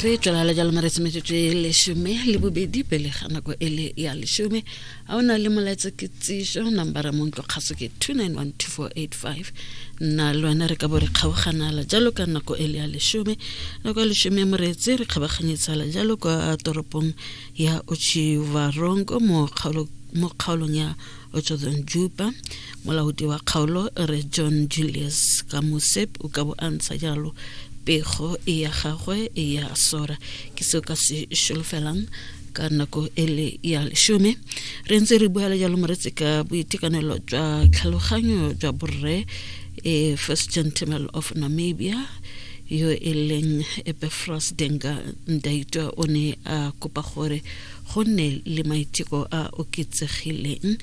re tswela la jalo maretsi metsotso e lesome le bobedi pele ga nako e le ya lesome a o na le molaetsa ke tsiso nambara mo ntlo kgaso ke 2912485 nna le wena re ka bo re kgaoganala jalo ka nako e le ya lesome nako ya lesome ya moreetsi re kgabaganyetsala jalo kwa toropong ya ochivarongo mo kgaolong ya o tswetseng jupa molaodi wa kgaolo re john julius ka mosep o ka bo a ntsha jalo pego e ya gagwe e ya sora ke seo ka se šolofelang ka nako e le ya lesome re ntse re bua le jalo moretse ka boitekanelo jwa tlhaloganyo jwa borre e first gentleman of namibia yo e leng epefros denga ndaitwa o ne a kopa gore go nne le maiteko a oketsegileng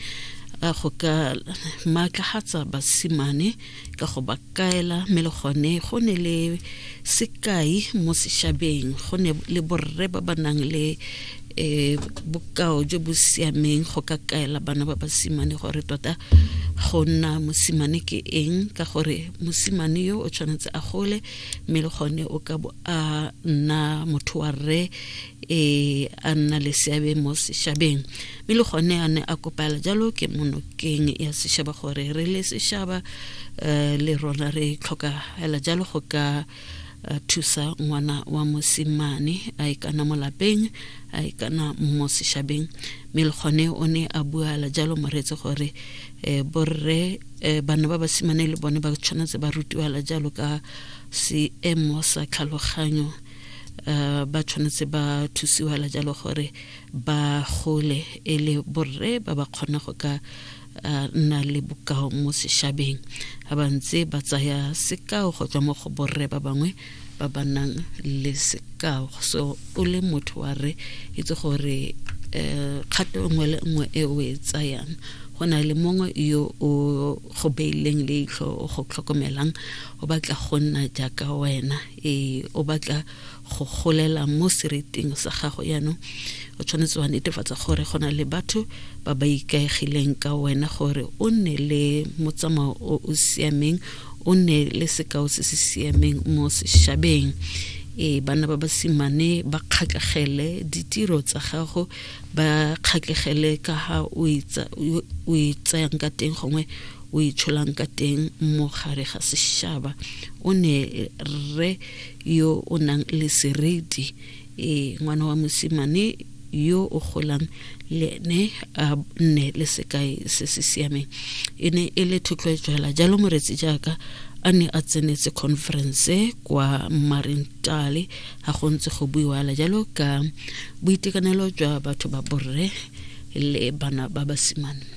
a go ka maatlagatsa basimane ka go ba kaela mme le gone go ne le sekai mo sešabeng go ne le borre ba ba nang le um bokao jo bo siameng go ka kaela bana ba basimane gore tota go nna mosimane ke eng ka gore mosimane yo o tshwanetse a gole mme le gone o ka bo a nna motho wa rre e a nna le seabe mo sešhabeng mme le gone a ne a kopala jalo ke monokeng ya sešhaba gore re le sešhaba um le rona re tlhoka fela jalo go ka eh, thusa ngwana wa mosimane a e kana mo lapeng a e kana mo sešhabeng mme le gone o ne a buala jalo moretse gore um borre um bana ba basimane le bone ba tshwanetse ba rutiwala jalo ka seemo sa tlhaloganyo uh, ba tshwanetse ba thusiwa la jalo gore ba gole e le borre ba ba kgona go ka uh, nna le bokao mo sešabeng ga ba ntse ba tsaya sekao go tswa mo go borre ba bangwe ba ba nang le sekao so o le motho wa re itse gore um kgato nngwe le nngwe e o e tsayang go na le mongwe yo o go beileng leitlho o go tlhokomelang o batla go nna jaaka wena ee o batla go golela mo sereting sa gago yaanong o tshwanetse wa netefatsa gore go na le batho ba ba ikaegileng ka wena gore o nne le motsamao o o siameng o nne le sekao se se siameng mo sešabeng e bana ba basimane ba kgatlhegele ditiro tsa gago ba kgatlhegele ka ga o e tsayang ka teng gongwe o itsholang ka teng mo gare ga sešaba o ne rre yo o nang le seriti e ngwana wa mosimane yo o golang le ene a nne le sekai se se siameng e ne e le thotloetso hela jalo moretsi jaaka a ne a tsenetse conference kwa marentale ga go ntse go buiwa la jalo ka boitekanelo jwa batho ba borre le bana ba basimane